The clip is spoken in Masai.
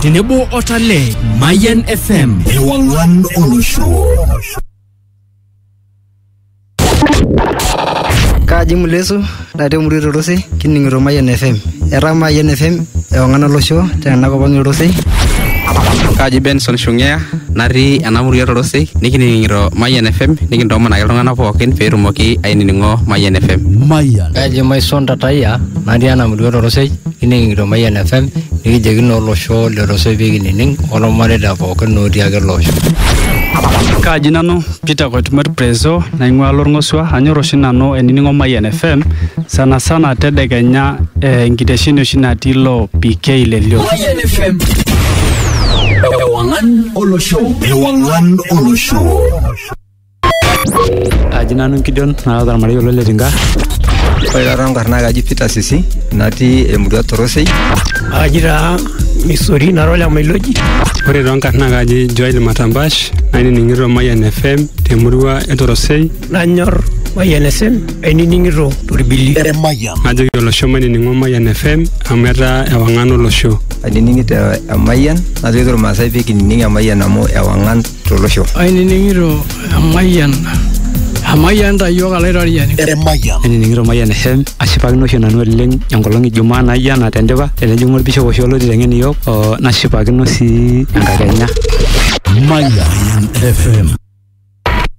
tenebo o Tale. Mayan FM. Ewang'an olosho. Kaji Mulesu natii emurua Torosei kining'ito Mayian FM. Etaa Mayian FM ewang'an olosho tena kop ang' Torosei. Kaji Benson Shungea natii ena murua Torosei nikining'ito Mayian FM nikintoomonaki iltung'anak pookin pee etumoki ainining'o Mayian FM. Mayian. Kaji Maison Tatayia natii ena murua Torosei Kining'ito Mayian FM nikijoki naa olosho letosoe pee kinining olmareita pookin otii ake ele osho. Kaaji nanu Peter Koitumot Prezo naing'ua Lorng'osua anyor oshi nanu ainining'o Mayian FM sana sana tedekenya eh, enkitesheni oshi natii ilo PK le Lio. Mayian FM. Ewang'an olosho. Ewang'an olosho. Aji nanu Gideon naata ormarei olo Letinka. Ore taata enkarna kaji Peter Sisi natii emurua Torosei. Aji taa Misori nara ole Mailoji. Ore too nkarna kaji Joel Matambash nainining'ito Mayian FM temurua e Torosei. Nanyor Mayian FM ainining'ito torbili. Najoki olosho mainining'o Mayian FM amu etaa ewang'an olosho. Ainining'ito Emayian najoki irmaasai pee kinining Emayian amu ewang'an tolosho. Ainining'ito emayian emayian ta iyiook alaitoriani. Emayian. Ainining'ito Mayian FM ashipakino oshi nanu oleng enkolong e Jumaa naijo ena tendipa tenejing'u olbishop oshi olotii teng'en iyiook oo nashipakino sii enkakenya. Mayian FM.